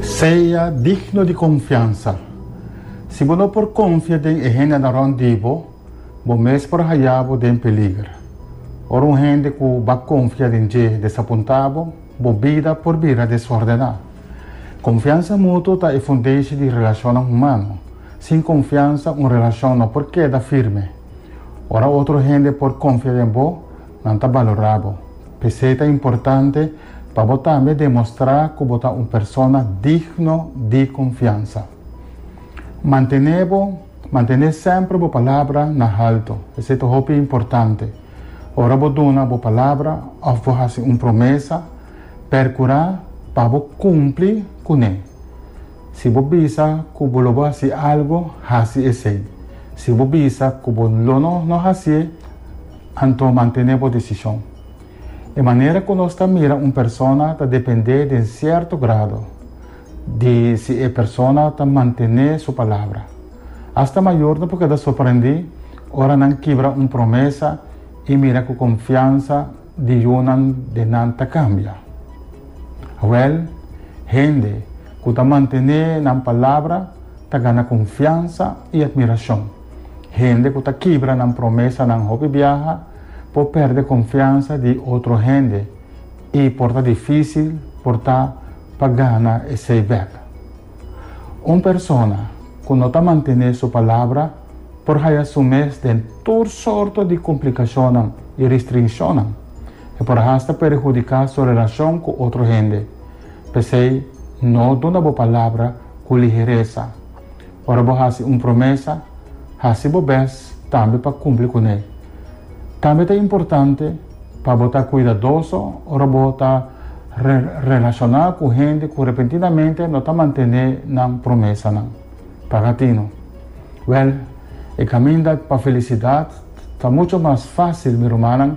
Sea digno di konfiansa. Si bo no por konfia den e hendenan rònt di bo, bo mes por haya bo den peliger. Ora un hende ku bo a konfia den dje desapuntá bo, bo bida por bira desórdená. Konfiansa mutuo ta e fundeshi di relashonnan humano. Sin konfiansa un relashon no por keda firme. Ora otro hende por konfia den bo, Nan ta balorá bo. P'esei ta importante pa bo tambe demostrá ku bo ta un persona digno di konfiansa. Mantené bo mantené semper bo palabra na haltu. Esei ta hopi importante. Ora bo duna bo palabra òf bo hasi un promesa, perkurá pa bo kumpli kuné. Si bo bisa ku bo lo bo hasi algu, hasi esei. Si bo bisa ku bo lo no hasié, Anto mantené bo desishon. E manera ku nos ta mira un persona ta dependé den sierto grado di si e persona ta mantené su palabra. Asta mayornan por keda sorprendí ora nan kibra un promesa i mira ku konfiansa di yunan den nan ta kambia. Awèl, hende ku ta mantené nan palabra ta gana konfiansa i atmirashon. Hende ku ta kibra nan promesanan hopi biaha por pèrdè konfiansa di otro hende i por ta difísil por ta pa gana esei bèk. Un persona ku no ta mantené su palabra por haya su mes den tur sorto di komplikashonnan i ristrinshonnan. E por hasta perhudiká su relashon ku otro hende. P'esei, no duna bo palabra ku liheresa. Ora bo hasi un promesa, hasi bo bes tambe pa kumpli ku n'e. Tambe ta importante pa bo ta kuidadoso ora bo ta relashoná ku hende ku repentinamente no ta mantené nan promesanan. Paga tino? Wèl, e kaminda pa felisidat ta muchu mas fásil, mi rumannan,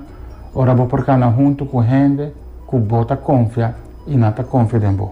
ora bo por kana huntu ku hende ku bo ta konfia i nan ta konfia den bo.